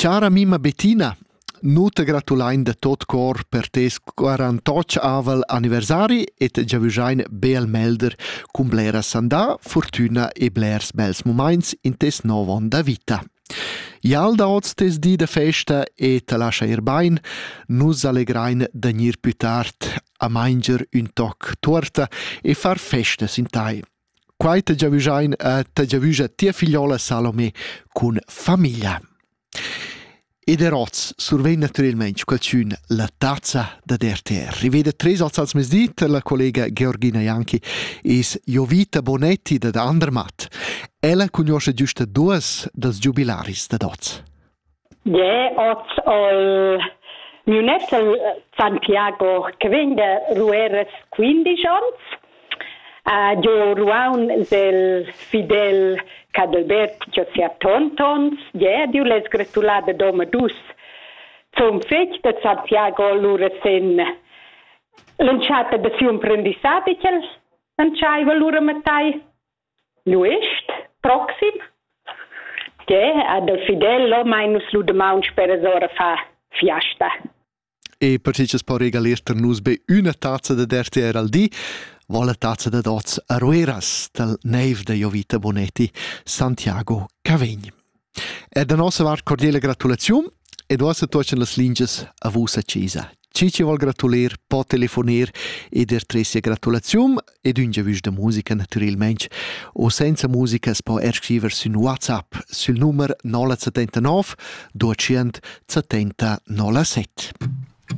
Chara mima Bettina, nu te gratulain da tot cor per tes quarantotg avel anniversari e te giavüschain be al melder cun blera sandà, fortüna e blers bels mumaints in tes nouv on da vita. Ial da hoz tes di da festa e te lascha ir bain, nus allegrain da gnir plü tard a manger ün toc tuorta e far festas in tai. Quai ta giavüschain e ta giavüscha tia figliola Salomé cun famiglia. Ed er oz survegn natüralmaing qualchün la tazza da RTR. Riveda tres oz als mezdi la collega Georgina Janki es Jovita Bonetti dad Andermatt. Ella cugnuoscha güsta duos dals giubilaris dad oz. Yeah, oz ho miu net San Piago che vegn da Rueras quindisch ons. Uh, giò Ruaun del fidel Cadalbert giò sia tontons. Yeah, diu les gratular da Doma dus zum fetg da Santiago lura sen l'entschatta da siu imprendissadi ch'el entschaiva lura mattai. Nuist proxim. Tgè ha dal Fidello mai nus lu damaun speras ora fa fiasta. E per tg'ins po regalir tar nus be üna tazza da dertier al di, vo la tazza da dots a Rueras dal neiv da Jovita Bonetti, Santiago Cavegn. E da nossa vart cordiala gratulaziun ed uossa tuoschan las lingias a vus a chesa. Chi chi vol gratuler po telefoner ed er tre sia gratulaziun ed ün giavüsch da musica natüralmente o senza musica s po er scriver sün WhatsApp sül numer 079 200 70 07.